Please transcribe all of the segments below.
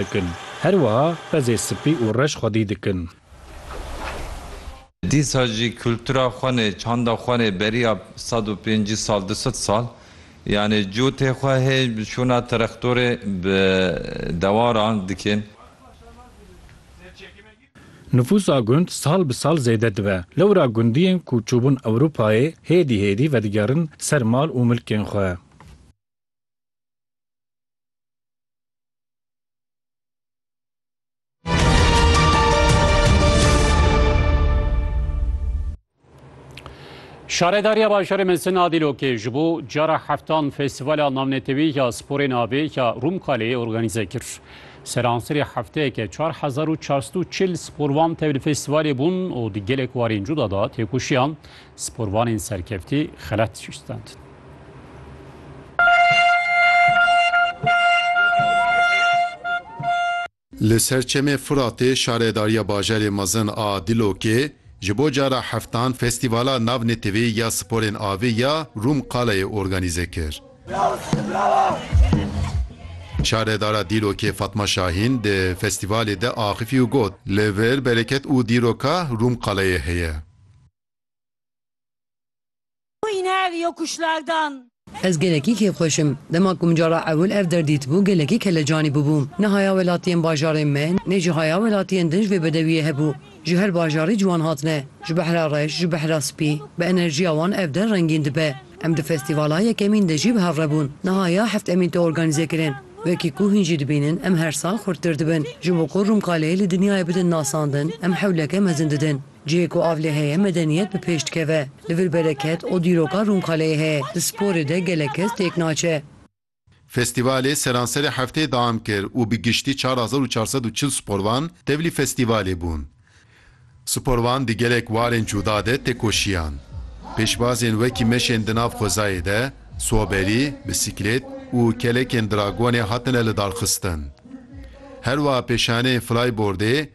dikin. Her wiha pezê sipî û reş xwedî dikin. Dîsa jî kultura xwenê, çanda xwenê beriya sed û pêncî sal, du sed sal yanê cotê xwe hê şûna terextorê bi dewaran dikin. Nifûsa gund sal bi sal zêde dibe. Lewra gundiyên ku çûbûn Ewropayê hêdî hêdî vedigerin ser mal û milkên xwe. Şaredariya Bajarê Mesin a Dîlokê ji bo cara heftan Festîvala Navnetewî ya Sporê Navê ya Rûmkaleyê organîze kir. Seransirê hefteyeke çar hezar û çar sed û çil sporvan tevlî festîvalê bûn û di gelek warên cuda de têkoşiyan Sporvanên serkeftî xelat şûştandin. Li ser Çemê Furatê Şaredariya Bajarê Mezin a Dîlokê ji bo cara heftan Festîvala Navneteweyî ya Sporên Avê ya Rûmqalayê organîze kir. Şaredara Dîlokê Fatma Şahîn di festîvalê de axifî û got, Li vir bereket û dîroka Rûmqalayê heye. Ez gelekî kêfxweş im. Dema ku min cara ewil ev der dîtibû gelekî kelecanî bûbûm. Niha ya welatiyên bajarên me nê jiha ya welatiyên din ji vê bedewiyê hebû. Ji her bajarî ciwan hatine. Ji behra reş, ji behra spî. Bi enerjiya wan ev der rengîn dibe. Em di festîvala yekemîn de jî bi hev re bûn. Niha ya heft emîn tê organîze kirin. Wekî ku hûn jî dibînin em her sal xurttir dibin. Ji bo ku Rûmkalê li dinyayê bidin nasandin em hewleke mezin didin. Cihê ku av lê heye medeniyet bi pêş dikeve. Li vir bereket û dîroka Rûmkaleyê heye. Di sporê de gelek kes têk naçe. Festîvalê seranserê hefteyê deam kir û bi giştî çar hezar û çar sed û çil sporvan tevlî festîvalê bûn. Sporvan di gelek warên cuda de têkoşiyan. Pêşbazên wekî meşên di nav xwezayê de, soberî, bisiklêt û kelekên dragonê hatine lidarxistin. Herwiha pêşaneyên flaybordê,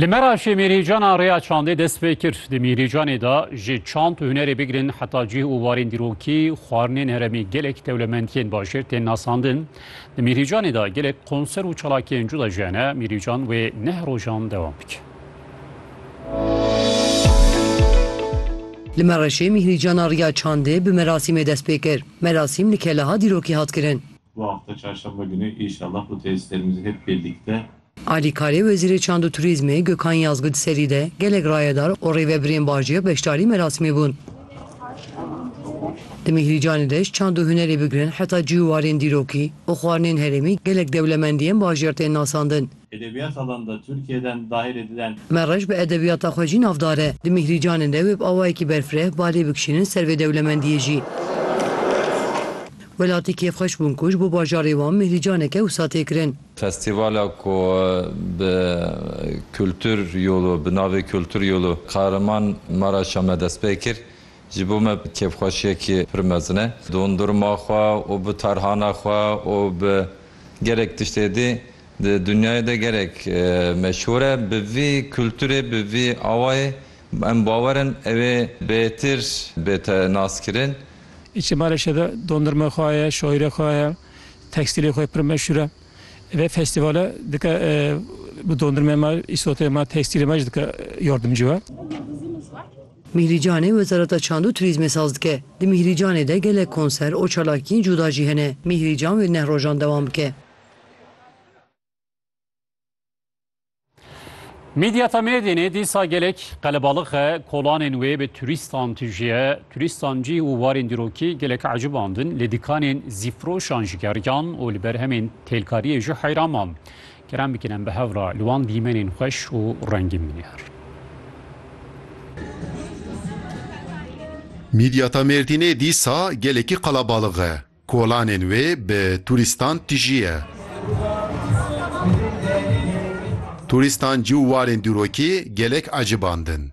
Li Meraşê mîrîcana rêya çandê dest pê kir. Di mîrîcanê de ji çand û hunerê bigirin heta cih û warên dîrokî, xwarinên heremî gelek dewlemendiyên bajêr tên nasandin. Di mîrîcanê de gelek konser û çalakiyên cuda jî hene. Mîrîcan wê neh rojan dewam bike. Li Meraşê mîrîcana rêya çandê bi merasîmê dest pê kir. Merasîm li keleha dîrokî hat kirin. Alîkarê Wezîrê Çand û Turîzmê Gökhan Yazgu di serî de gelek rayedar û rêvebirên bajêr beşdarî merasimê bûn. Di Mîhrîcanê de ji çand û hunerê bigirin heta cî û warên dîrokî û xwarinên herêmî gelek dewlemendiyên bajêr tên nasandin. Edebiyata dan da Türkiye den dahirê diden. Me reş bi edebiyata xwe jî navdar e. Di Mîhrîcanê de wê bi awayekî berfireh balê bikişînin ser vê dewlemendiyê jî. Welatî kêfxweş bûn ku ji bo bajarê wan Mîhrîcaneke wisa tê kirin. Festîvala ku bi Kultur Yolu bi navê Kultur Yolu Kahraman Maraşa me dest pê kir ji bo me kêfxweşiyekî pir mezin e. Dondurma xwe û bi tarhana xwe û bi gelek tiştê dî di dinyayê de gelek meşhûr e. Bi vî kulturê bi vî awayê em bawer in ew ê bêtir bête naskirin. Îçê Maraşê de dondurma xwe heye, şoîre xwe heye. tekstîlê xwe pir meşhur e. Vê festîvala dike bi dondurmeyê me, îsoteyê me, tekstîlê me jî dike yardimcî we. Mîhrîcanê Wezareta Çand û Turîzmê saz dike. Di Mîhrîcanê de gelek konser û çalakiyên cuda jî hene. Mîhrîcan wê neh rojan dewam bike. Mîdyata Mêrdînê dîsa gelek qelebalix e, kolanên wê bi turîstan tijî ye. Turîstan cî û warên dîrokî gelek ecibandin, lê dîkanên zîfroşan jî geriyan û li ber hemên têlkariyê jî heyran man. Kerem bikin em bi hev re li wan dîmenên xweş û rengîn binêr. Mîdyata Mêrdînê dîsa gelekî qelebalix e. Kolanên wê bi tûrîstan tijî ye. Tûrîstan cî û warên dûrokî gelek ecibandin.